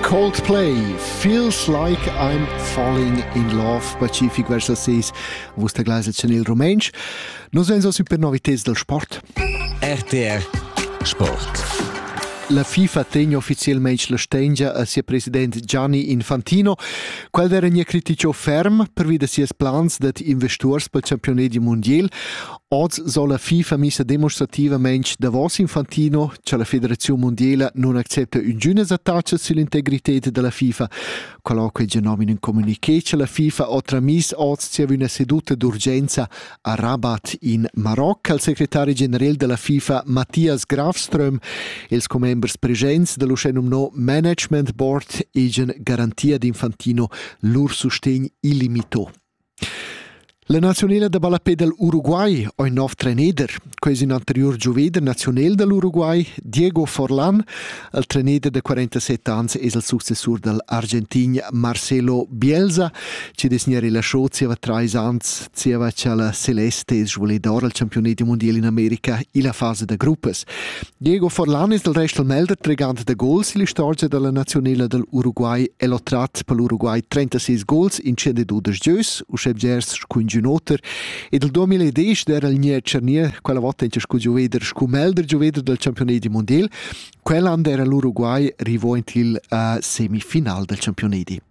Coldplay Feels Like I'm Falling in Love pacific verso 6 vus te gleis en il rumentsch Nos vens a super noviteds del sport RTR Sport La FIFA tegna ufficialmente la stengia a sia president Gianni Infantino, quel era nie critico ferm pervi da sias plans dat investors per il campionat di mondial Oz so la FIFA missa demonstrativamain davos Infantino, cha la Federaziun mundiela non accepta üngünas attachas sull'integrited da la FIFA. Qualoque genomine in communiqué cha la FIFA ho tramis oz zieva üna seduta d'urgenza a Rabat in Maroc al secretari general della FIFA Matthias Grafström, els commembers presents dall'uschè nomnò Management Board egen garantia d'Infantino lur sustegn illimito. La naziunela da ballapè dal Uruguay ho il nov treneder. Quai es ün anteriur giuveder naziunel dal Uruguay, Diego Forlan. Il treneder da 47 ans es il successur dal Argentin Marcelo Bielsa, chi'd es gnà rilascià zieva trais ans, zieva cha la Celeste es svuledora al campiunat mundial in America illa fasa da gruppas. Diego Forlan es dal rest il meglder tregant da gols illa istorgia da la naziunela dal Uruguay el ho trat pel Uruguay 36 gols in 112 gieus, uschè bgers scu ingün oter, ed il 2010 d'eira il Gnè Cernier quella vota inter scu gioveder scu meglder gioveder dal campiunedi mundiel. Quell'an d'eira l'Uruguay rivo in til uh, semifinal dal campiunedi.